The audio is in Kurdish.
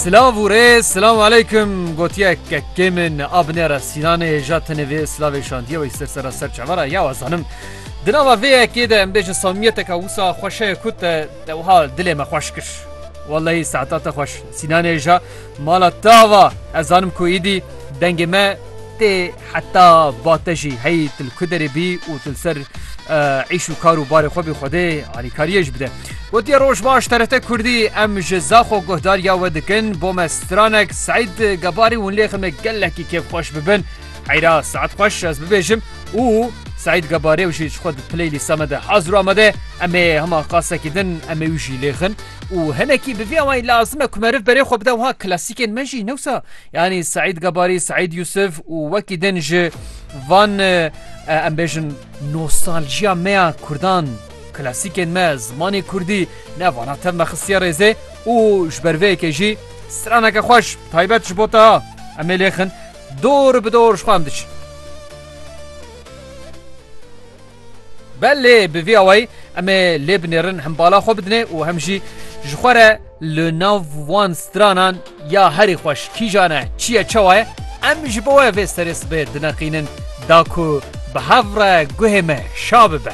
Silav û rêz Silamu aleykum gotiye kekê min a binêre Sînanê ja tenê vê silavê şandiye wê ser sera ser çevara ya we zanim. Di nava vê yekê de em bêjin samiyeteka wisa xweşeye ku te te wiha dilê me xweş kir. Wellahî saeta te xweş Sînanê ja mala te ava ez zanim ku îdî dengê me Tê heta ba te jî heyî tu li ku derê bî û tu li ser îş û kar û barê xwe bî Xwedê alîkariyê ji bide. Gotiye roj baş TRT Kurdî em ji Zaxo guhdariya we dikin bo me stranek Seîd Gebarî hûn lê ximek gelekî kêfxweş bibin heyra saet xweş ez bibêjim û Seîd Gebarê jî ji xwe di piley lîsa me de hazir û amade em ê hema qasekî din em ê wî jî lêxin û hinekî bi vî awayî lazim e ku meriv berê xwe bide wiha klasîkên me jî newsa Yanî Seîd Gebarî, Seîd Yûsif û wekî din ji van em bêjin nostaljiya me ya Kurdan, klasîkên me, zimanê Kurdî ne vana tev me xistiye rêzê û ji ber vê yekê jî straneke xweş taybet ji bo te ha em ê lêxin dor bi dor ji xwe em diçin. Be lê bi vî awayî em ê lê binêrin hem bala xwe bidinê û hem jî ji xwe re li nav wan stranan ya herî xweş kîjan e, çi ye, çawa ye em ji bo we vê serê sibê dineqînin da ku bi hev re guhê me şa bibe.